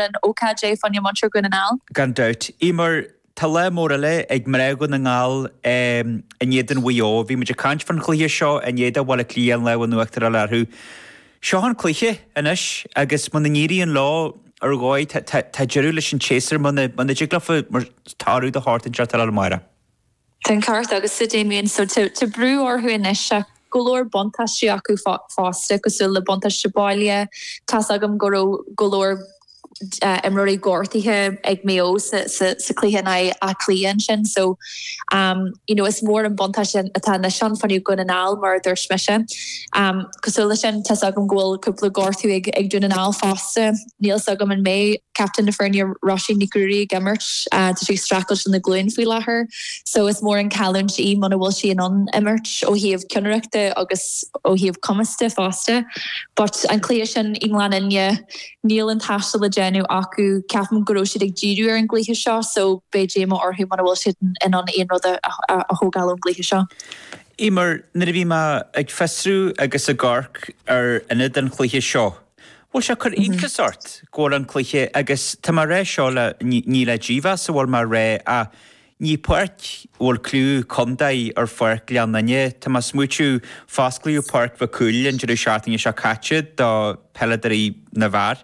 an ócáid Dé hAoine muintir Dhún na nGall. Gan dabht. Eimear, tá lá mór eile ag mná Dhún na nGall in éadan Mhaigh Eo. Bhí muid ag caint faoin chluiche seo i ndiaidh do Bhaile Átha Cliath an lámh in uachtar a fháil orthu. Seo an cluiche anois agus muna n-éiríonn leo ar dhóigh tá deireadh leis an tséasúr muna dtig leofa mar déarfá toradh de shórt inteacht a fháil amárach. Tá an ceart agatsa Damien so tá tá brú orthu anois ach go leor buntáistí acu fosta cosúil le buntáiste baile. Tá's agam go raibh go leor imreoirí gortaithe ag Maigh Eo sa chluiche in aghaidh Áth Cliath ansin so you know is mór an buntáiste atá anois ann fá choinne Dhún na nGall mar a dúirt mise. Cosúil leis sin tá's agam go bhfuil cúpla gortú ag Dún na nGall fosta. Níl 's agam an mbeidh Captain na Foirne Róisín Nic Ruairí ag imirt, tá sí ag streachailt lena glúin faoi láthair so is mór an cailliúint í muna bhfuil sí in ann imirt ó thaobh ceannaireachta agus ó thaobh cumas de fosta but an cluiche sin í nGleann Fhinne níl an taisteal le déanamh acu ceapaim go raibh siad ag díriú ar an gcluiche seo so beidh díomá orthu muna bhfuil siad in ann aon rud a thógáil ón gcluiche seo. Eimear, nuair a bhí mé ag fiosrú agus ag amharc ar ionad an chluiche seo, Bhfuil sé ag cur iontais ort go bhfuil an cluiche agus tá mé a rá seo le ní le dímheas a bhfuil mé a rá ach ní páirc a bhfuil cliú contae ar pháirc Ghleann Fhinne tá mé ag smaoitiú foscladh Páirc Mhic Cumhaill an deireadh seachtaine seo caite do pheileadóirí na bhfear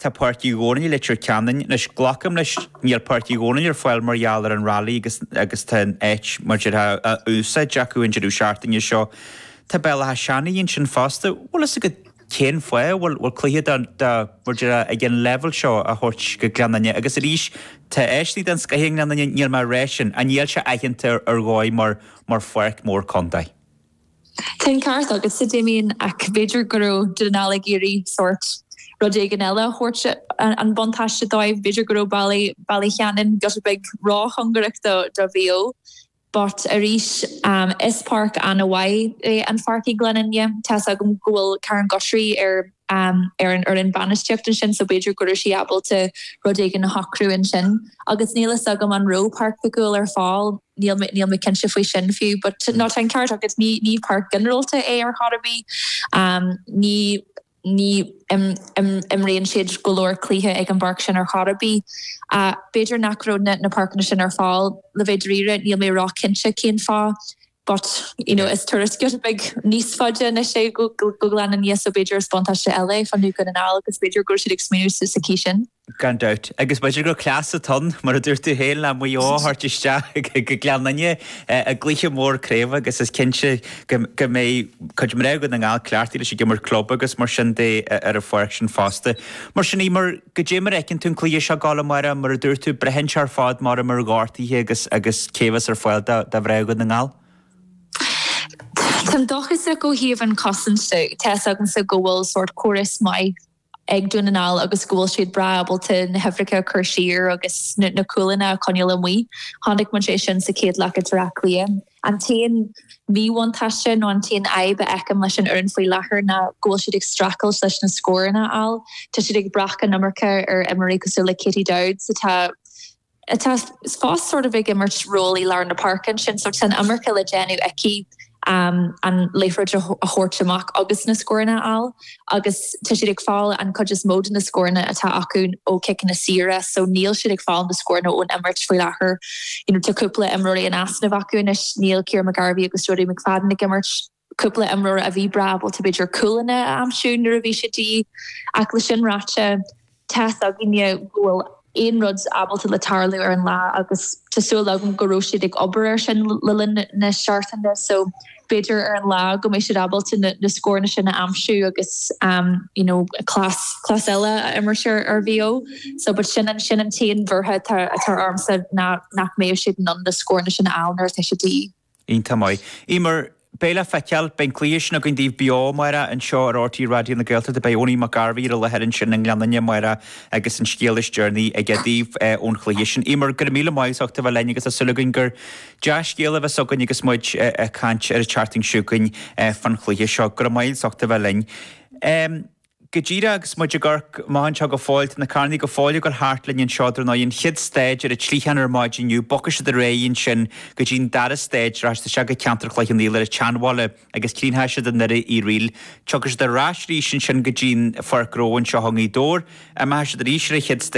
tá Páirc Uí Dhomhnaill Leitir Ceanainn anois glacaim leis níl Páirc Uí Dhomhnaill ar fáil mar gheall ar an rally agus agus tá an áit mar déarfá á úsáid acu an deireadh seachtaine seo tá Béal Átha Seanaidh ansin fosta bhfuil fhios agat cén fáth a bhfuil cluiche de mar déarfá ag an leibhéal seo á thabhairt go Gleann Fhinne agus arís tá áiseanna den scoth i nGleann Fhinne, níl mé a rá sin, ach níl sé aitheanta ar dhóigh mar pháirc mhór contae. Tá'n ceart agatsa Damien ach b'fhéidir go raibh Dún na nGall ag iarraidh sórt rud éigin eile a thabhairt an buntáiste dóibh, b'fhéidir go raibh Ballyshannon giota beag róchóngarach do Mhaigh Eo. But arís is páirc an-mhaith é an pháirc i nGleann Fhinne. Tá's agam go bhfuil Karen Guthrie ar ar an fhoireann bainistíocht ansin so b'fhéidir go raibh sí ábalta rud éigin a shocrú ansin agus níl fhios agam an raibh páirc oifigiúil ar fáil, níl níl mé cinnte faoi sin fiú but no tá an ceart agat ní ní páirc ginearálta é ar chor ar bith. Ní. ní imríonn siad go leor cluiche ag an bpáirc sin ar chor ar bith. B'fhéidir nach raibh na páirceanna sin ar fáil le bheith dáiríre, níl mé róchinnte cén fáth but you know is turas giota beag níos faide anois é go Gleann Fhinne so b'fhéidir is buntáiste eile é fá choinne Dhún na nGall agus b'fhéidir go raibh siad ag smaoineamh sa chaoi sin. Gan dabht. Agus b'fhéidir gur cleas atá ann, mar a dúirt tú féin, le Maigh Eo a thabhairt isteach go Gleann Fhinne i gcluiche mór craoibhe agus is cinnte go mbeidh cuid de mhná Dhún na nGall cleachtaithe leis an imirt club agus mar sin de ar an pháirc sin fosta. Mar sin, Emer, cad é mar a fheiceann tú an cluiche seo ag gabháil, mar ea, mar a dúirt tú, braitheann sé ar fad mar ea ar ghortuithe agus cé a bheas ar fáil do mhná Dhún na nGall. Táim dóchasach ó thaobh an chosaint de. Tá's agamsa go bhfuil sórt córas maith ag Dún na nGall agus go bhfuil siad breá ábalta na huimhreacha a chur siar agus na cúlanna a choinneáil amuigh. Chonaic muid é sin sa chéad leath i mBaile Átha Cliath. An t-aon mhíbhuntáiste nó an t-aon fhadhb a fheicim leis an fhoireann faoi láthair ná go bhfuil siad ag streachailt leis na scóranna a fháil. Tá siad ag brath an iomarca ar imreoirí cosúil le Katie Dowds atá. atá fós sort of ag imirt ról i lár na páirce ansin so tá an iomarca le déanamh aici um an liathróid a a thabhairt amach agus na scóranna a fháil agus tá siad ag fáil an chuid is mó de na scóranna atá acu ó chiceanna saora so níl siad ag fáil na scóranna ón imirt faoi láthair. You know, tá cúpla imreoirí in easnamh acu anois, níl Ciara McGarvey agus Jodie McFadden ag imirt Cúpla imreoir a bhí breá ábalta b'fhéidir cúlanna a aimsiú nuair a bhí siad de dhíth ach le sin ráite tá's againne go bhfuil aon rud ábalta le tarlú ar an lá agus tá súil agam go raibh siad ag obair air sin le linn na seachtaine so b'fhéidir ar an lá go mbeidh siad ábalta na scóranna sin a aimsiú agus you know cleas cleas eile a imirt ar ar Mhaigh Eo so but sin an sin an t-aon bhuartha atá atá ormsa ná nach mbeadh siad in ann na scóranna sin a fháil nuair atá siad de dhíth. Iontach maith. Emer, beidh le feiceáil. Beidh an cluiche sin againn daoibh beo, mar ea, anseo ar RTÉ Raidió na Gaeltachta. Beidh Eoghainí Mac Gairbheith ar an láthair ansin i nGleann Fhinne, mar ea, agus an scéal is deireanaí aige daoibh ón chluiche sin. Emer, go raibh míle maith as ucht a bheith linn agus tá súil againn gur dea-scéala a bheas againn agus muid ag caint ar an tseachtain seo chugainn fán chluiche seo. Go raibh maith as ucht a bheith linn. go díreach agus muid ag amharc amach anseo go fóill, tá na carrannaí go fóill ag gabháil thart linn anseo, dar ndóigh, an chéad stage ar an tSloitheán ar maidin inniu, bogfaidh siad ar aghaidh ansin go dtí an dara stage, rachaidh siad isteach go ceantar Chloich Cheann Fhaola ar an tSeanbhaile agus críochnóidh siad i nDoire Uí Fhríl, tiocfaidh siad ar ais arís ansin go dtí an Pháirc Ghnó anseo i nGaoth Dobhair, imeoidh siad arís ar an chéad